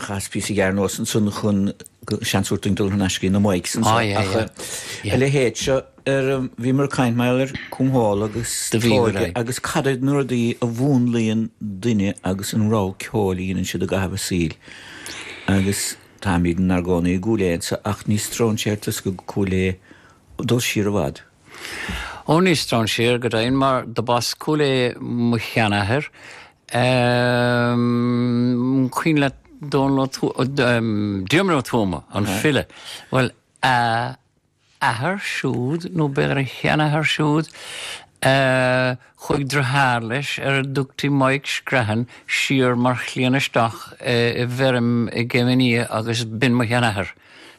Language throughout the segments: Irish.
Chas píosa gearr anuas ansan chun seans a thabhairt duinn dul thar n-ais go dtí na mics anso ach a leithéid seo ar bhíomar ag caint mar ar Cúnmhál agus Trócaire agus cad iad na rudaí a mhúnlaíonn duine agus an rogha ceoil a dhéanann siad i gcaitheamh a saoil agus táimid inár gcónaí i gCúil Aodha anso ach ní stróinséir tusa go Cúil Aodha ag dul siar i bhfad. Ó ní stróinséir go deimhin mar do b'as Cúil Aodha mo sheanathair, Ehm, cuimhin leat Dónall Ó Tuama, ehm, Diarmaid Ó Tuama, an file. Bhuel, a athair siúd, nó b'fhéidir a sheanathair siúd, eh, chuaigh driotháir leis ar a dtugtaí Maidhc Screathan siar mar chliamhain isteach eh, i bhfeirm i gCéim an Fhia agus b'in mo sheanathair.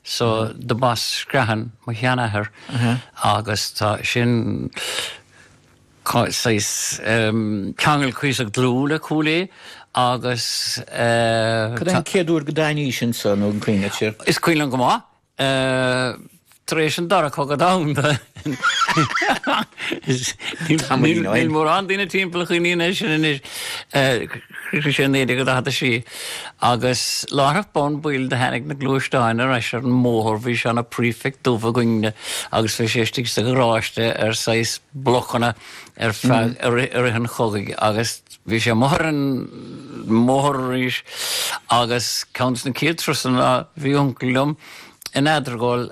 So, do b'as Screathan mo sheanathair agus tá sin, saghas ceangal cuíosach dlúth le Cúil Aodha agus. Cad é an chéad uair go dtánaís anso, nó an cuimhin leat sin? Is cuimhin liom go maith. Tar éis an Dara Cogadh Domhanda níl mórán daoine timpeall a chuimhníonn air sin anois. Chríochnaigh sé i 1946 agus láithreach bonn baill do tháinig na gluaisteáin ar ais ar an mbóthar, bhí seana-Prefect dubh againne agus bhí sé istigh sa gharáiste ar saghas blocanna ar feadh, i rith, i rith an chogaidh agus bhí sé amuigh ar an mbóthar arís agus ceann des na chéad turasanna, bhí uncail liom, In Eadargóil,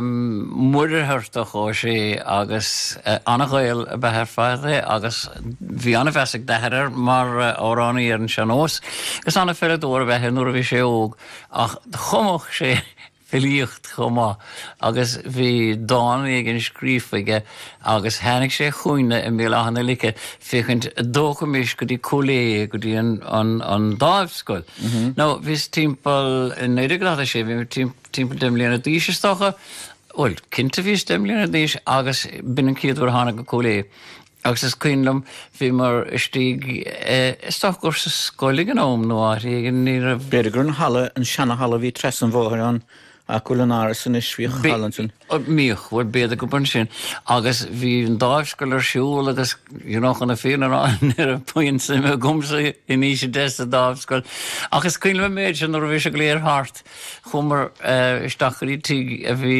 Muircheartach Ó Sé agus an-Ghael ab ea ar fad é agus bhí an-mheas ag d'athair air mar amhránaí ar an sean-nós agus an-pheileadóir ab ea é nuair a bhí sé óg ach chumadh sé filíocht chomh maith agus bhí dán éigin scríofa aige Agus tháinig sé chugainne i mBéal Átha na Lice féachaint a' dtógfaimis go dtí Cúil Aodha, go dtí an, an, an Dámhscoil. Now, bhíos timpeall, i naoi déag daichead a sé, bhí mé tim- timpeall deich mbliana d'aois is dócha, bhuel, cinnte bhíos deich mbliana d'aois agus b'in an chéad uair a thána go Cúil Aodha. Agus is cuimhin liom, bhíomar istigh, eh, is dócha gur sa scoil ag an am nó áit éigin, ní raibh, B'fhéidir gur an halla, an seana-halla a bhí trasna an bhóthair ann, Áit a bhfuil an Áras anois? Bhíodh halla ansin. mbíodh, bhuel b'fhéidir gurb ansin agus bhí an dámhscoil ar siúl agus you know chun na fírinne a rá ní raibh puinn suime agamsa in aois a deich sa dámhscoil ach is cuimhin liom an méid sin nuair a bhí sé go léir thart chuamar isteach go dtí tigh a bhí